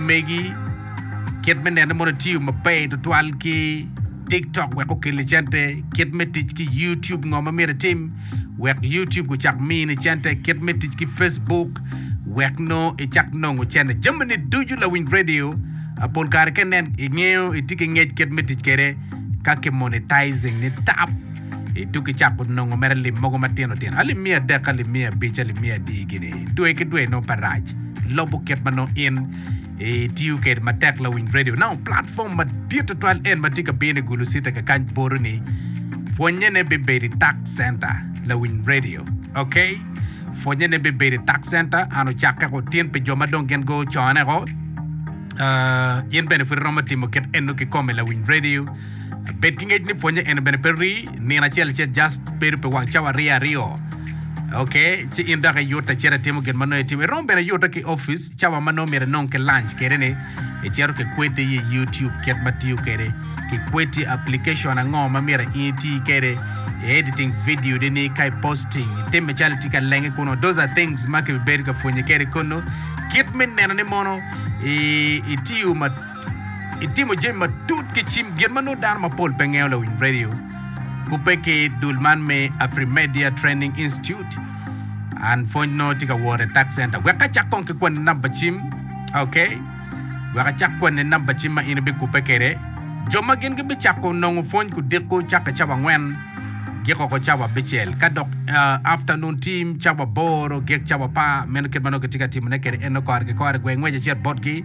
megi. Kit me nene mono etiyo maber tutwal ki TikTok wek okel ni cente. Kit me tic ki YouTube ngo ma myero itim wek YouTube ocak mini cente. Kit me tic ki Facebook wek no icak nongo cente. Jami ni ducu lawiny radio pol kare ka inen ingeyo itye ki ngec kit me tic kede ka ki monetizing ni tap. I tukki cako nongo mere lim mogo matino tino, alim miya adek ki alim miya abic, alim miya adi gini, dwe ki dwe nongo pe rac. Lobo kit ma nongo in itiyo kede matek lawiny radio nao platform madit tutwal en ma tye ka bino i gulu city ka kany boro ni pwonyene bibedo i tak center lawiny radio ok pwonyene bibedo i tak center an ocakke ko tin pi jo ma dong gin go cone ko uh, in bene pud iromo timo kit eno kikome lawiny radio Bed ki ngec ni pwonye eno bene pe rii nino acel ce just bedo pi wang cawa aryo aryo. Ok, ci in dok iyutte cito itimo gin ma nongo itimo. Iromo bene yutte ki opic cawa ma nongo myero inong ki lunch kede ni icito ki kweti i YouTube kit ma tiyo kede ki kweti application ango ma myero in iti kede i editing video de ni ka i posting itime calo itye ka lenge kunu. Those are things ma kibibedo ka pwonye kede kunu kit me neno ni mono i, itiyo ma Itimo jami matut ki cim, gin ma nongo dano mapol pe ngeyo lawiny radio kubbe ki dul man me Afrimedia Training Institute. An pwony nongo tye ka woro i tax center. Wek acak kong ki kwanni namba cim. Ok. Wek acak kwanni namba cim ma in ibikubbe kwede. Jo ma gin gibicako nongo pwony kudiko cakke cawa angwen gik oko cawa abicel ka dok uh, afternoon team cawa aboro gik cawa apar. Meno kit ma nongo kitye ka timone kwede. En nongo kore ki kore gwe ngwec acel botgi.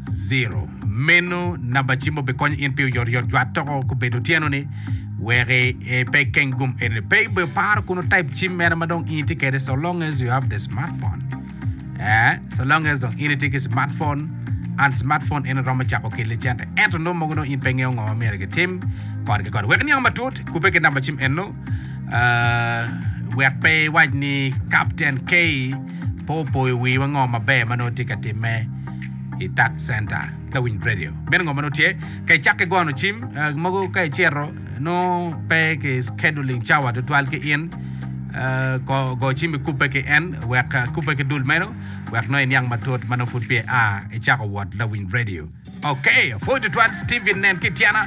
Zero. Meno namba cimo bikonyo in pi oyotoyot jwat toko kubedo otyeno-ni wek pe ikeng gum eni. Pe ibedo paro kun otype cim mere ma dong in itye kwede so long as you have the smartphone. Eh, so long as dong in itye ki smartphone, and smartphone eni romo cako ki licente ento nongo mogo dong in pe ingeyo ngo ma myero kitim kodgi kore. Wek iniang matut, kubbe ki namba cim eno. Ah, wek pe iwac ni Captain K pe opoyo wiwa ngo maber ma nongo tye ka timme. i Tax Center ka winy radio. Meno ngo ma nongo tye? Ka icakke gono cim, mogo ka icito nongo pe ki scheduling cawa tutwal ki in, go cim ikubbe ki en wek kubbe ki dul meno wek nongo iniang matut ma nongo pud peya aa icako wot Lawiny Radio. Okay, apwoyi tutwal Steven nen ki ityena.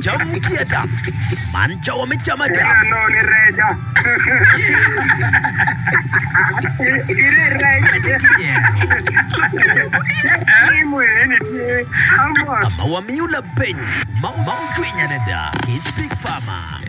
Cam mucwi ada. Man cawa me cam ada. Ka ma wamiyo labeng ma ocwiny adada ki Spik Fama.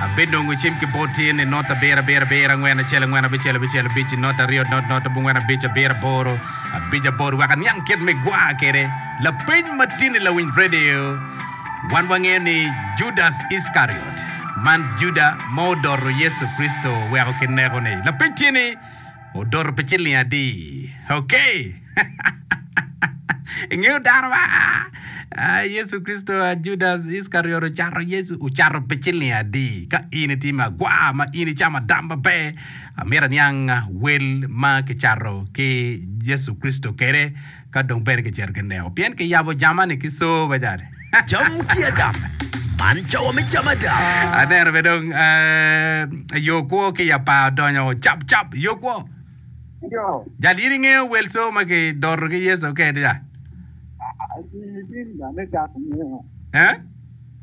Abinongo cim ki bot tye ni not abiro abiro abiro angwen acel angwen abicel abicel abic i not aryo not not abongwen abic abiro aboro abic aboro wek aniang kit me gwa kwede lapeny ma tye ni lawiny redio. Wan wangeyo ni Judas Iskariot man Juda ma odoto Yecu Kricito weko kineko-ni. Lapeny tye ni. Odoto pi ciling adi? Okay! Ingeyo dano ma aa Yecu Kricito a Judas Iskariot ocato Yecu? Ocato pi ciling adi? Ka in itye me agwar ma in icamo adam maber, amito aniang wel ma kicato ki Yecu Kricito kede. ka dong peya kicito ki neko pien kiyabo jamani ki soo me cani. Cam ki adam, man cawa me cam adam. Aneno be dong yo kwo ki i apar odonyo cap cap yo kwo. Yo. Jal in ingeyo wel soo ma ki doto ki Yecu kedi ya? Aa, in, in, ane cak ingeyo. Eh?